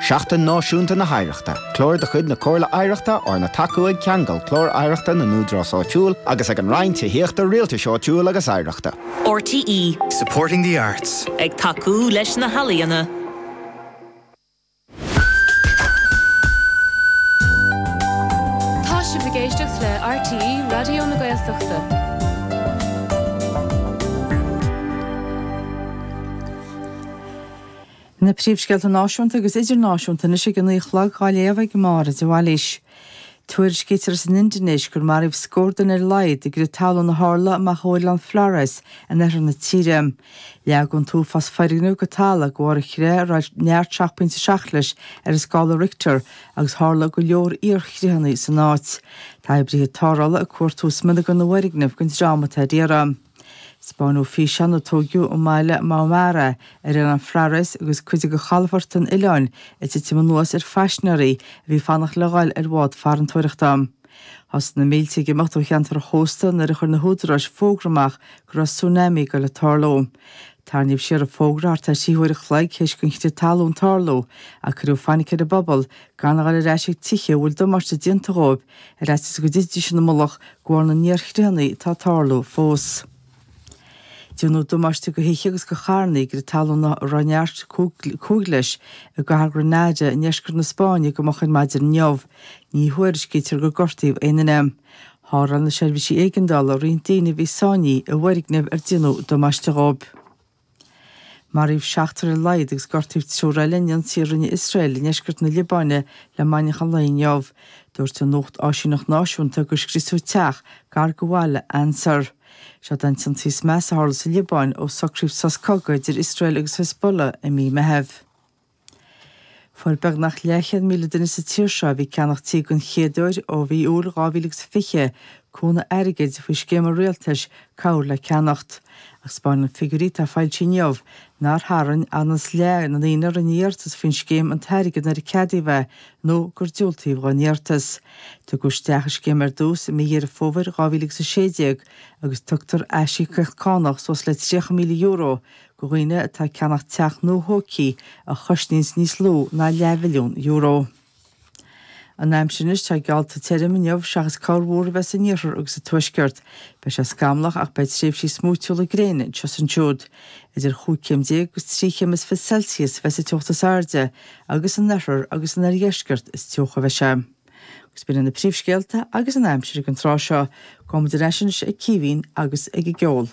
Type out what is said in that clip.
Seachtain Náisiúnta na hOidhreachta, clár de chuid na Comhairle Oidhreachta arna tacú ag Ceangal Clár Oidhreachta na nÚdarás Áitiúil agus ag an Roinn Tithíochta, Rialtais Áitiúil agus Oidhreachta. RTÉ. Supporting the arts. Ag tacú leis na healaíona. Tá sibh ag éisteacht le RTÉ Raidió na Gaeltachta. Na príomhscéalta náisiúnta agus idirnáisiúnta anois ag a naoi a chlog dhá léamh ag Máire de Bhailís. Tuairiscítear as an Indinéis gur maraíodh scór duine ar a laghad i gcrith talún a tharla amach ó oileán Flores in oirthear na tíre. Leag an t-uafás foirgneamh go talamh go bharr an chreatha a raibh neart seacht bpointe seacht leis ar an scála Richter agus tharla go leor iarchreathanna san áit. Tá oibrithe tarrthála ag cuartú smionagair na bhfoirgneamh don dream atá ar iarraidh. Spáinneadh físeán a tóigeadh i mbaile Maumere ar oileán Flores agus cuid de chalafort an oileáin ag titim anuas ar phaisnéaraí a bhí fanacht le ghoil ar bhád farantóireachta. Thosaigh na mílte ag imeacht ó cheantar an chósta nuair a chuir na húdaráis fógra amach go raibh tsunami ag dul ag tarlú. Tarraingíodh siar an fógra thart ar thrí huair an chloig théis gon chrith talún tarlú, ach cuireadh fainic ar an bpobal gan a dhul ar ais ag tithe a bhfuil damáiste déanta dhóibh, ar fhaitíos go dtitfidís ina mullach de bharr na n-iarchreathanna atá ag tarlú fós. Déanadh damáiste go thithe agus go charrannaí i gcrith talún a raibh neart cúig leis i gcathair Granada i ndeisceart na Spáinne go moch ar maidin inniu, ní thuairiscítear gur gortaíodh aon duine. Tharrtháil na seirbhísí éigeandála roinnt daoine a bhí sáinnithe i bhfoirgneamh ar déanadh damáiste dhóibh. Maraíodh seachtar ar a laghad agus gortaíodh triúr eile in ionsaí a rinne Iosrael i ndeisceart na Liobáine le maidneachan an lae inniu. Dúirt an nuachtáisíneacht náisiúnta gur scriosadh teach gar go bhaile Ansar. Seod é an t-ionsaí is measa a tharla sa Liobáin ó socraíodh sos cogaidh idir Iosrael agus Hezbollah i mí Meitheamh. Fuair beagnach leathchéad míle duine sa tír seo a bhí ag ceannach tí den chéad uair ó mhí Iúil 2020 cúnamh airgid faoi scéim an rialtais Cabhair le Ceannacht ach spáineann figiúirí atá foilsithe inniu nár tharraing anuas leath na ndaoine a rinne iarratas faoin scéim an t-airgead nuair a ceadaíodh é nó gur diúltaíodh don iarratas. Tugadh isteach an scéim ar dtús i mí Dheireadh Fómhair 2016 agus tugtar aisíocaíocht cánach suas le €30,000 go dhaoine atá ag ceannach teach nua thógtha a chosnaíonns níos lú ná leathmhilliún euro. An aimsir anois, tá geallta tirim inniu seachas corrmhúr a bheith san iarthar agus sa tuaisceart. Beidh sé scamallach ach beidh tréimhsí smúitiúla gréine anseo is ansiúd. Idir chúig chéim déag agus trí chéim is fiche Celsius a bheidh sa teocht is airde agus san oirthear agus san oirdheisceart is teocha a bheidh sé. Agus b'in na príomhscéalta agus an aimsir ag an tráth seo. Gabhaimid ar ais anois ag Caoimhín agus ag an gceol.